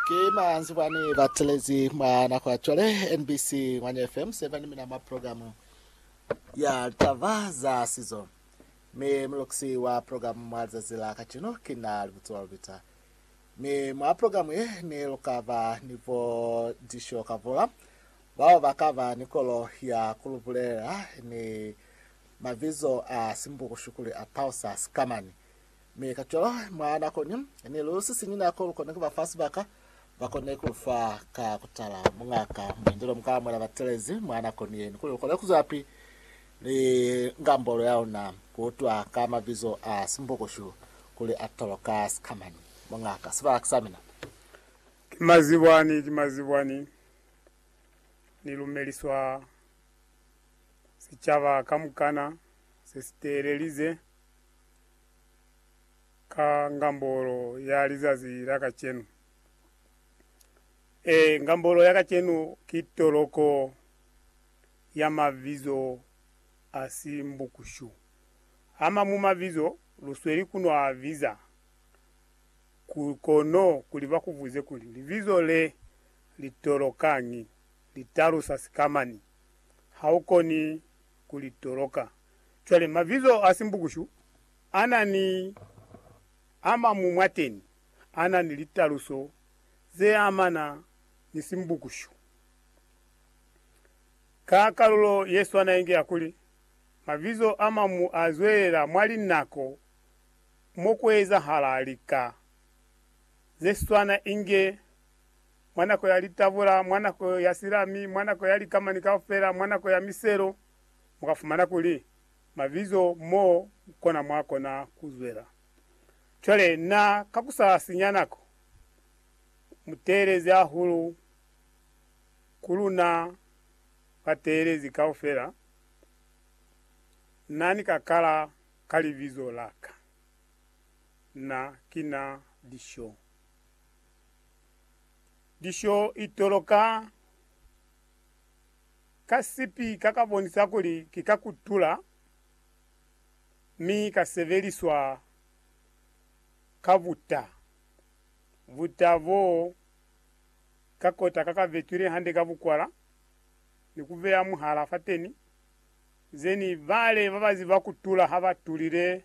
Ki manzibwa ni batelezi mwa nako ya cwale NBC Ngwanya FM 7 mina mwa program ya litaba za sizo. Mi mulukisi wa program mwa lizazi la kacino ki na Libutsiso la Lubita. Mi mwa program ye ni lukaba ni bo Disho Kavula bao bakaba ni kolo ya kulubulela ni mabizo a simbukushu kuli a Pausas kamani Mi kacwalo, mwa nako ni ni lu sisiñi nako, lu kona ku ba fa sibaka, ba kone ku lu fa ka kutala Mungaka Muindelo, mu ka amuhela batelezi mwa nako ni yeni, kuli lu kone ku zwelapi ni ngambolo ya luna, ku utwa ka mabizo a Simbukushu kuli a tolwa ka sikamani. Mungaka, sibaka sa mina. Ki mazibwani, ki mazibwani, ni lumeliswa sicaba kamukana se si teelelize. ka ngambolo ya lizazi la kacenu. Ee, ngambolo ya kacenu ki toloko ya mabizo a si mbukushu. A mañwi mabizo lu sweli ku no a biza, kono kuli ba ku buze kuli, Libizo le li tolokañi? Li talusa sikamañi? Ha u koni ku li toloka. Cwale, mabizo a simbukushu a na ni a mañwi mwateni a na ni litaluso ze amana ni simbukushu. Ka kalulo ye swana inge ya kuli, mabizo a mañwi a zwelela mwa linako mo ku ezahala lika ze swana inge mwa nako ya litabula, mwa nako ya silami, mwa nako ya likamani kaufela, mwa nako ya miselo, mu ka fumana kuli mabizo mo kona mwa kona ku zwela. Cwale, na ka ku sa sinya nako, mu teelezi hahulu ku luna bateelezi kaufela, Na ni ka kala ka Libizo la Ka. Na ki Na Lisho. Lisho i toloka ka sipika ka bonisa kuli ki ka kutula mi ka sebeliswa ka buta. Buta bo ka kota ka ka betwile hande ka bukwala ni ku beya muhala fateni, zeni bale ba ba ziba kutula ha ba tulile